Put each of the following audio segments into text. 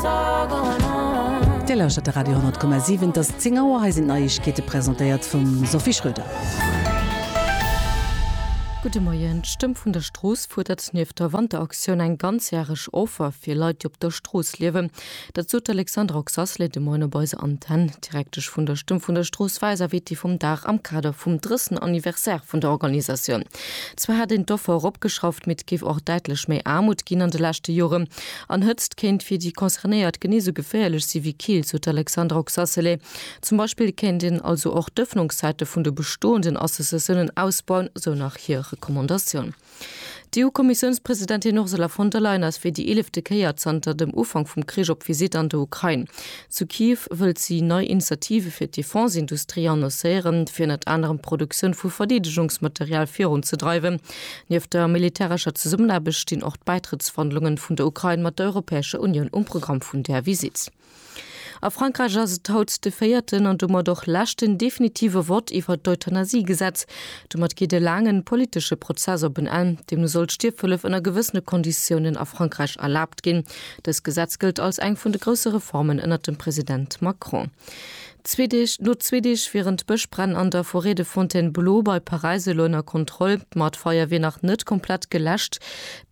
Dir lauschtert de Radio 10,7. Et ass 10 Auer, hei sinn d'Neiegkeete presentéiert vum Sophie Schröder. Gudde Moien, d'Stëmm vun der Strooss fuerdert nieft der Wanteraktioun eng ganzjäreg Offer fir Leit, déi op der Strooss liewen. Dat sot d'Alexandra Oxasley de Moien op eiser Antenn. D'Direktesch vun der Stëmm vun der Strooss war eiser Weti vum Dag am Kader vum drëssen Anniversaire vun der Organisatioun. Zwar hätt een d'Offer eropgeschrauft, mee et géif och däitlech méi Aarmut ginn an de leschte Joren. An Hëtzt kéint fir déi Concernéiert genee sou geféierlech si wéi Kill, sou d'Alexandra Oxacelay. Zum Beispill kéint een also och d'Ëffnungszäite vun de bestoenden Associatiounen ausbauen, sou nach hir Recommandatioun. D'EU-Kommissiounspresidentin Ursula von der Leyen ass fir déi eelefte Kéier zanter dem Ufank vum Krich op Visitt an der Ukrain. Zu Kiew wëllt si nei Initiative fir d'Defense-Industrie annoncéieren, fir ënnert anerem d'Produktioun vu Verdeedegungsmaterial virunzedreiwen. Nieft der militärescher Zesummenaarbecht stinn och d'Bäitrëttsverhandlungen vun der Ukrain mat der Europäescher Unioun um Programm vun där Visitt. A Frankräich ass et haut de véierten an domat och leschten definitive Vott iwwert d'Euthanasiegesetz. Domat geet e laangen politesche Prozess op en Enn. Deemno soll d'Stierfhëllef ënner gewëssene Konditiounen a Frankräich erlaabt ginn. Dëst Gesetz gëllt als eng vun de grousse Reformen ënnert dem President Macron. Zwee Deeg, Lo zwee Deeg wieren d'Bëschbränn an der Forêt de Fontainebleau bei Paräis elo ënner Kontroll. Ma d'Feier wier nach net komplett geläscht.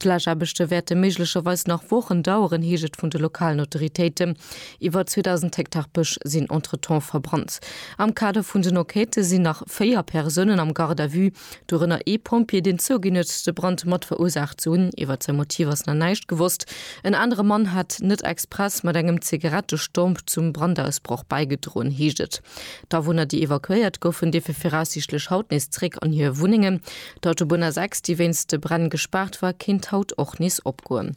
D'Läschaarbechte wäerte méiglecherweis nach Wochen daueren, heescht et vun de lokalen Autoritéiten. Iwwer 2.000 Hektar Bësch sinn entretemps verbrannt. Am Kader vun den Enquêtë sinn nach véier Persounen am Garde à vue. dorënner ee Pompjee, deen zouginn huet, de Brand mat verursaacht ze hunn. Iwwert säi Motiv ass nach näischt gewosst. En anere Mann hat net express mat engem Zigarettestomp zum Brandausbroch bäigedroen, heescht et. D'Awunner, déi evakuéiert goufen, dierfe viraussiichtlech haut nees zeréck an hir Wunnengen. D'Autobunn A6, déi wéinst de Bränn gespaart war, kéint haut och nees opgoen.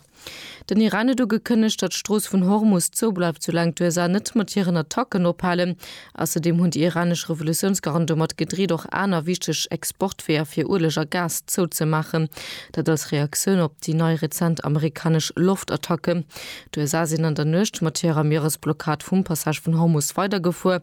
Den Iran huet ugekënnegt, datt d'Strooss vun Hormus zou bleift, soulaang d'USA net mat hiren Attacken ophalen. Ausserdeem hunn déi iranesch Revolutiounsgarden domat gedreet, och aner wichteg Exportweeër fir Ueleg a Gas zouzemaachen. Dat als Reaktioun op déi nei rezent amerikanesch Loftattacken. D'USA sinn an der Nuecht mat hirer Mieresblockad vum Passage vun Hormus weidergefuer.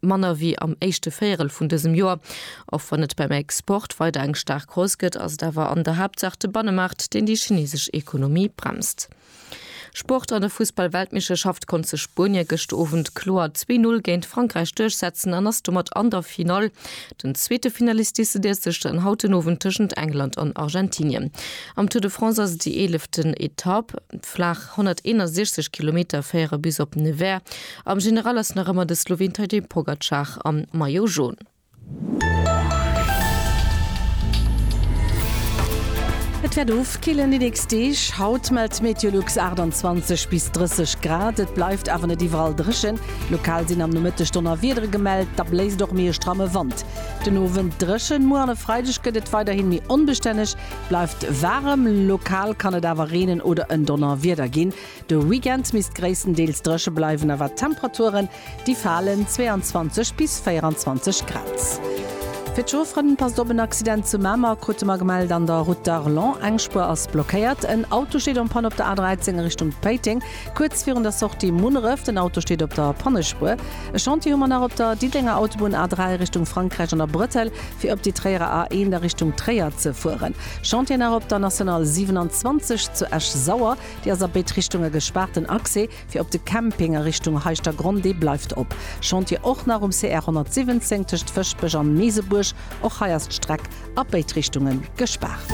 Manner wéi am éischte Véierel vun dësem Joer. Och wann et beim Export weider eng staark Hausse gëtt, ass et awer an der Haaptsaach de Bannemaart, deen déi chinesesch Ekonomie bremst. Sport, An der Fussball-Weltmeeschterschaft konnt sech Spuenie gëscht Owend kloer zwee Null géint Frankräich duerchsetzen an ass domat an der Finall. Den zweete Finalist decidéiert sech dann haut den Owend tëschent England an Argentinien. Am Tour de France ass et déi eeleften Etapp. Flaach. 161 Kilometer féiere bis op Nevers. Am General ass nach ëmmer de Sloween Tadej Pogacar am Maillot Jaune. Et wäert ofkillen déi nächst Deeg. Haut mellt d'Meteolux 28 bis 30 Grad. Et bleift awer net iwwerall dréchen. Lokal sinn am Nomëtteg Donnerwiedere gemellt, da bléist och méi e stramme Wand. Den Owend dréchen, muer an e Freideg gëtt et weiderhin méi onbestänneg. Bleift waarem, lokal kann et awer reenen oder en Donnerwieder ginn. De Weekend misst gréisstendeels dréche bleiwen, a wat d'Temperaturen, déi falen 22 bis 24 Grad. Fir d'Chaufferen, Passt op, en Accident zu Mamer krute mer gemellt an der Route d'Arlon. Eng Spuer ass blockéiert. En Auto steet en Panne op der A13 a Richtung Péiteng. Kuerz virun der Sortie Munneref, den Auto steet op der Pannespuer. E Chantier hu mer nach op der Diddenger Autobunn A3 Richtung Frankräich an der Brëttel, fir op déi Tréierer A1 a Richtung Tréier ze fueren. Chantier nach op der National 27 zu Esch-Sauer, déi ass a béid Richtunge gespaart. Den Accès fir op de Camping a Richtung Heischtergronn, dee bleift op. Chantier och nach um CR 117 tëscht Fëschbech an Meesebuerg, och hei ass d'Streck a béid Richtunge gespaart.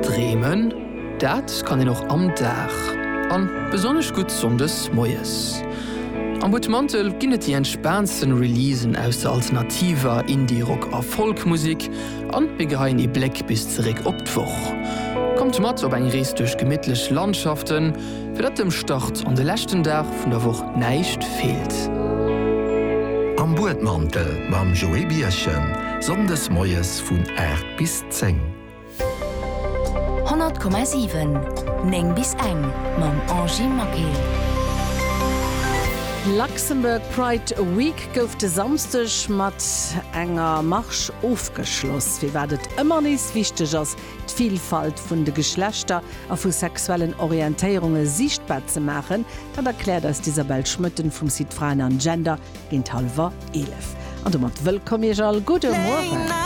Dreemen, dat kann een och am Dag, an besonnesch gutt Sonndes moies. Am Butmantel ginn et déi entspaantsten Releasen aus der alternativer, Indie-Rock a Folk-Musik, an mir geheien ee Bléck bis zeréck op d'Woch. Kommt mat op eng Rees duerch gemittlech Landschaften. Fir datt dem Start an de leschten Dag vun der Woch näischt feelt. Am Buedmantel mam Joé Birchen, Sonndes moies vun 8 bis 10. 100,7, 9 bis eng mam Angie Maquil. Luxembourg Pride Week gouf de Samsdeg mat enger Marche ofgeschloss. Firwat et ëmmer nees wichteg ass, d'Villfalt vun de Geschlechter a vu sexuellen Orientéierunge siichtbar ze maachen, dat erkläert eis d'Isabelle Schmoetten vum Site Fraen an Gender géint hallwer 11. An domat wëllkomm Iech all, gudde Mueren!